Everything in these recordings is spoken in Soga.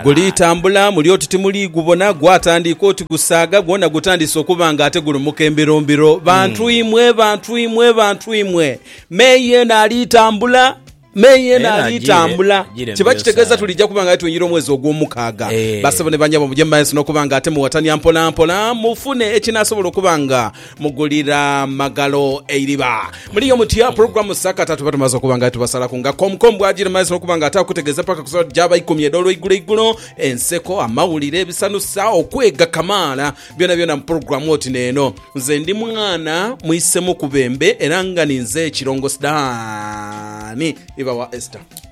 Guliitambula muli oti timuliigubona, gwatandiika oti gusaaga, gwona gutandiise okuba nga ate gulumuka embirombiro. Bantu imwe, bantu imwe, bantu imwe, me yeena aliitambula, me yeena aliitambula. Kiba kitegeeza tuliija kuba nga aye twingira omwezi ogw'omukaaga. Bassebo ni bannyabo, muje mu maeso n'okuba nga ate muwatania mpolampola, mufune ekinaasobola okuba nga Mugulira magalo eiriba. Muliyo mutya? Pulogulamu sakata tuba tumaze okuba nga tubasalaku nga komkom bw'agira mazira okuba nga ate akutegeeza mpaka ku saawa gy'aba ikumi edh'olweiguloigulo. Enseko, amawulire, ebisanusa, okwega kamaala byonabyona mu pulogulamu oti n'eno. Nze ndi mwana mwisemu ku bembe era nga ninze Kirongosi Daani. Iba wa Esther.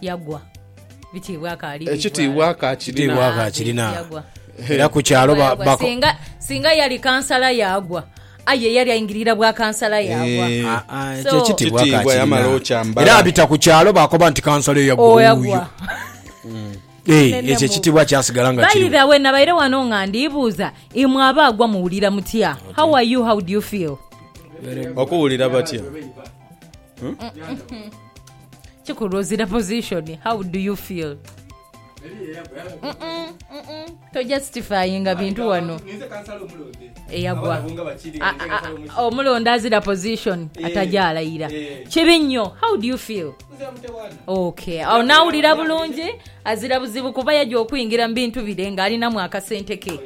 yagwa. Bitiibwa akaalibibwa. Ekitiibwa akaakirina. Ekitiibwa akaakirina. Yagwa. Era ku kyalo ba, ba, singa, singa yali kansala yagwa aye yali aingirira bwa kansala yagwa eh, ah, ah, so, ekitiibwa akaakirina. Era abita ku kyalo bakoba nti kansala eyagwa oh, wuuyo eh, ekyo ekitiibwa kyasigala nga kiri. By the way, nabaire wano nga ndiibuuza imwe aba agwa muwulira mutya? How are you? How do you feel? Okuwulira batya? kikulwozira position how do you feel to justifyinga bintu wano eyagwa omulonda azira position eh. atajalayira eh. kibi nnyo how do you feel ok awo nawulira bulungi azira buzibu kuba yajja okuyingira mu bintu bire ng'alinamu akasente ke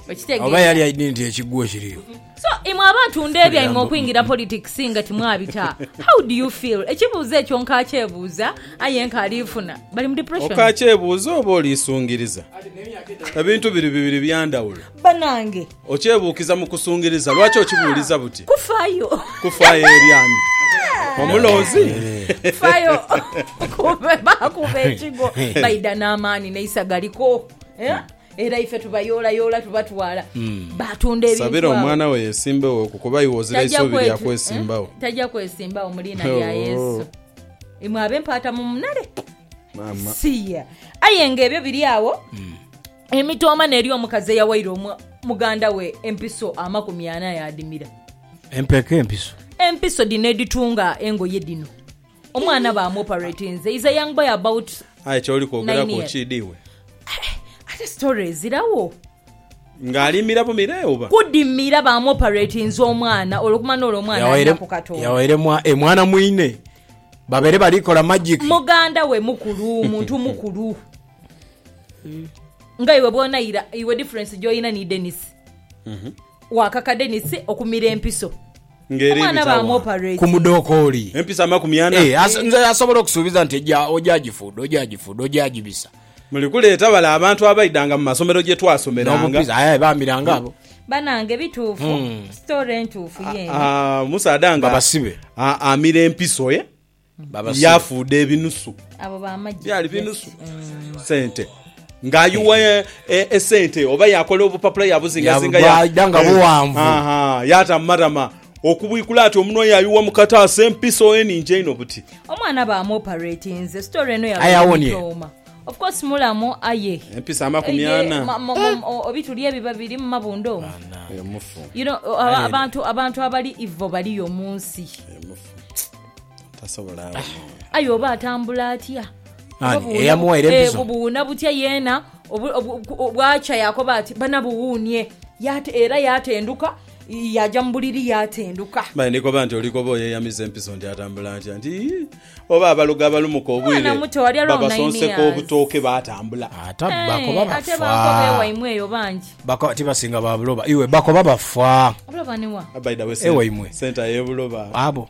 okitegeoba yali alina nti ekigwo kiriyo So imwe abantu ndebyaimwe okwingira politics nga timwabita how do you feel ekibuuzo ekyo nkakyebuuza aye nkaali funa bali mu depression. Okakyebuuza oba oliisungiriza? Ebintu biri bibiri bya ndhawulo. Banange. Okyebuukiza mu kusungiriza. Lwaki okibuuliza buti? Kufaayo. Kufaayo eri ani? Omulonzi? Faayo ku be baakuba ekigo baidha n'amaani n'eisaga liko. Era ife tubayoolayoola tubatwala, baatunda ebintu Sabira awo. omwana we yesimbewoku kuba iwe ozira Tajja isuubi lya kwetu- kwesimbawo. eh, Tajja kwesimbawo mu liina lya Oh. Yesu. Imwe ab'empaata mu munale. Maama. Siya. Aye nga ebyo biri awo, Hmm. emitooma n'eri omukazi eyawaire omu- muganda we empiso amakumi ana yaadimira. Empeke empiso. Empiso dhino edhitunga engoye dhino. Omwana ba mu operatinze is a young boy about Aye kyoli kwogeraku nine years. okyidi iwe? Ate story ezirawo. Nga alimira bumire oba? Kudimira ba mu operatinze omwana olwo kumana olwo omwana Yawaire alinaku katonda. yawaire mwa e mwana mwine. Babere bali kola magic. Muganda we mukulu muntu mukulu. Nga iwe bwonaira iwe difference gyoyina ni Denis. Wakaka Denis okumira empiso. ng'era Omwana ebita agho. ku baamuoparate. mudhokooli. Empisa amakumi ana. Eeh, as, nze asobola okusuubiza nti eja, oja gifuudha, oja gifuudha, oja gibisa. Muli kuleeta bale abantu abaidhanga mu masomero gye twasomeranga. N'obupiza, aye bamiranga abo. Banange bituufu, story ntuufu yeene. Aa, omusaadha nga. Babasibe. A, amira empiso ye. yafuuda ebinusu byali binusu sente nga ayiwa e- e- esente oba yakola obupapula yabuzingazinga ya- Yabubaida nga Eh, buwanvu. aha, yata mumatama okubwikula ati omunwa yayiwa mukataasa empiso eningi einho buti omwana bamwoparatinze story eno Aye awonie. yabaomitoma of course mulamu aye empisa amakumi Eye, ana ma- ma- ma- o- obi tuli ebi babiri mumabunda omu Emufu, you know, aba- abantu abantu abali ivo baliyo munsi emufu. tasobola aye oba atambula atya eh, buwuuna butya yeena bwakya yakoba ati bana buwuunie era yatenduka yaja mu buliri yatenduka mani ndikoba nti olikoba oyeyamiza empiso nti atambula atya nti oba abalogo abalumuka obwire babasonseka obutooke batambula ate bakoba bafa tibasinga babuloba iwe bakoba bafa ewaimwe sente ayebuloba abo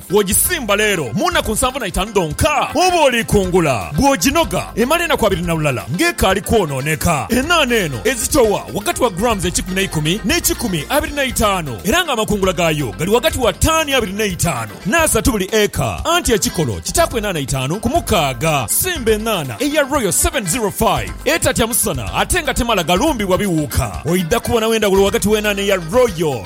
Bw'ogisimba leero, mu nnaku nsanvu na itaanu dhonka oba oliikungula. Bw'oginoga, emala enaku abiri na lulala ng'ekaali kwonooneka. Enaana eno ezitowa ghagati wa grams ekikumi n'eikumi n'ekikumi abiri na itaanu, era ng'amakungula gaayo gali ghagati wa taani abiri n'eitaanu n'asatu buli eka, anti ekikolo kitaaku enaana itaanu ku mukaaga. Simba enaana eya Royal 705 etatya musana ate nga temala galumbibwa biwuuka. Oidha kubonagho endhawulo ghagati w'enaana eya Royal.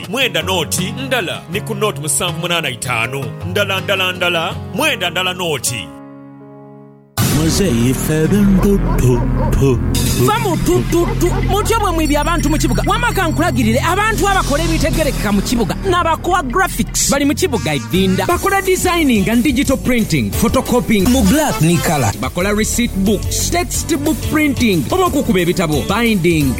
mwenda noti ndala ni ku noti musanvu munaana itaanu ndala ndala ndala mwenda ndala noti. Muzeeyi ffe ebintu tu tu tu. Va mu tu tu tu mutyo mwe mwibi abantu mu kibuga wama kankulagirire abantu abakola ebitegerekeka mu kibuga na ba Core Graphics bali mu kibuga Idinda bakola designing and digital printing, photocopying mu black ni colour, bakola receipt books, text book printing oba okukuba ebitabo, binding.